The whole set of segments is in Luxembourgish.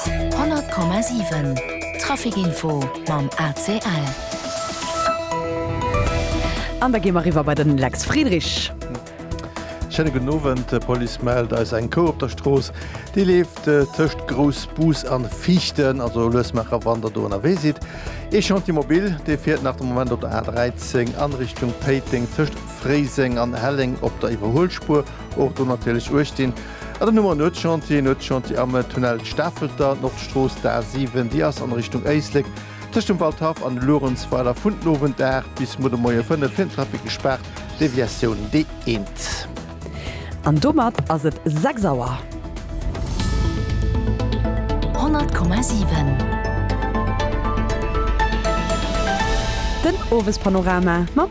100,7 Trafic-Info mam ACL. An da gi mer eriwwer bei de Lex Friedrich. Schéine gudden Owend. D'Police mellt eis eng Kou op der Strooss. Déi leeft tëscht Groussbus a Viichten, also lues maacher, wann Der do ënnerwee sidd. Ee Chantier mobile, dee fiert nach de Moment op der A13 a Richtung Péiteng, tëscht Fréiseng an Helleng op der Iwwerhuelspuer. Och do natierlech uecht dinn. An dann hu mer en Nuetschantier, en Nuetschantier am Tunnel Stafelter, Nordstrooss, d'A 7, déi ass an Richtung Éislek tëscht dem Waldhaff an Luerenzweiler vun den Owend 8 bis muer de Moie 5 fir den Trafic gespaart, Deviatioun D1. An domat ass et 6 Auer. 100,7. Den Owespanorama mam.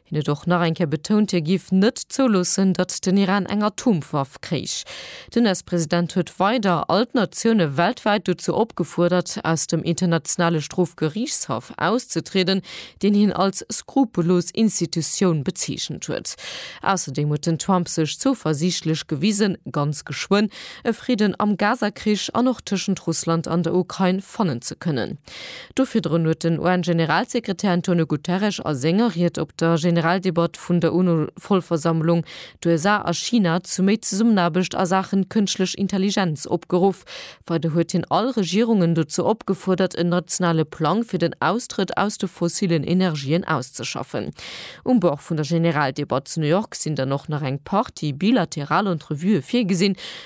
Hien huet och nach eng Kéier betount, hie giff net zouloossen, datt den Iran eng Atomwaff kréich. Den US-President huet weider all d'Natioune weltwäit dozou opgefuerdert, aus dem Internationale Strofgeriichtshaff auszetrieden, deen hien als skrupellos Institutioun bezeechent huet. Ausserdeem huet den Trump sech zouversiichtlech gewisen, ganz geschwënn e Fridden am Gaza-Krich an och tëschent Russland an der Ukrain fannen ze kënnen. Do virdrun huet den UN-Generalsekretär Antonio Guterres a senger Ried op der Generaldebatt vun der UNO-Vollversammlung d'USA a China zu méi Zesummenaarbecht a Saachen kënschtlech Intelligenz opgeruff. Weider huet hien all Regierungen dozou opgefuerdert en nationale Plang fir den Austrëtt aus de fossillen Energien auszeschaffen. Um Bord vun der Generaldebatt zu New York sinn dann och nach eng Partie bilateral Entrevuë virgesinn,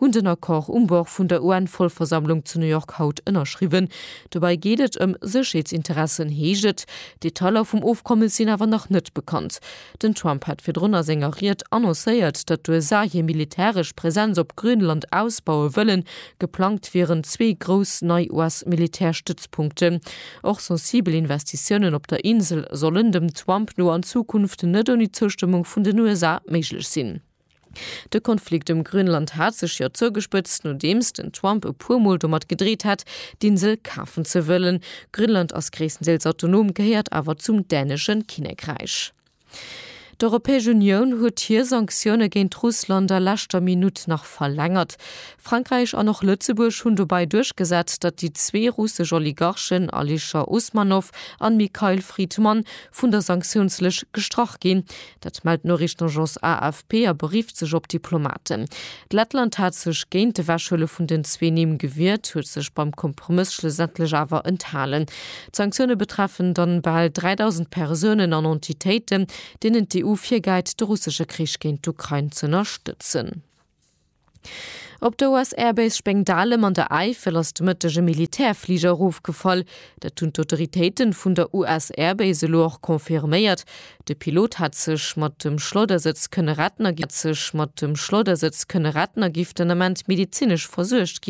hunn den Accord um Bord vun der UN-Vollversammlung zu New York haut ënnerschriwwen. Dobäi geet et ëm Sécherheetsinteressen, heescht et. D'Detailer vum Ofkommes sinn awer nach net bekannt. Den Trump hat virdrun a senger Ried annoncéiert, datt d'USA hir militäresch Presenz op Grönland ausbaue wëllen. Geplangt wieren zwee grouss nei US-Militärstëtzpunkten. Och sensibel Investitiounen op der Insel sollen, dem Trump no, an Zukunft net ouni Zoustëmmung vun den USA méiglech sinn. De Konflikt ëm Grönland hat sech jo zougespëtzt, nodeems den Trump e puer Mol domat gedreet hat, d'Insel kafen ze wëllen. Grönland ass gréisstendeels autonom, gehéiert awer zum dänesche Kinnekräich. D'Europäesch Unioun huet hir Sanktioune géint Russland a leschter Minutt nach verlängert. Frankräich an och Lëtzebuerg hunn dobäi duerchgesat, datt déi zwee russesch Oligarchen Alisher Usmanov an Mikhail Fridman vun der Sanktiounslëscht gestrach ginn, Dat mellt d'Noriichtenagence AFP a berifft sech op Diplomaten. D'Lettland hat sech géint d'Ewechhuele vun den zwee Nimm gewiert, huet sech beim Kompromëss schlussendlech awer enthalen. D'Sanktioune betreffen dann bal 3.000 Persounen an Entitéiten, deenen d'EU virgäit, de russesche Krich géint d'Ukrain z'ënnerstëtzen. Op der US Air Base Spengdalem an der Äifel ass de Mëtteg e Militärfliger erofgefall. Dat hunn d'Autoritéiten vun der US Air Base elo och confirméiert. De Pilot hat sech mat dem Schleudersëtz kënne retten a giff den Ament medezinesch versuergt ginn.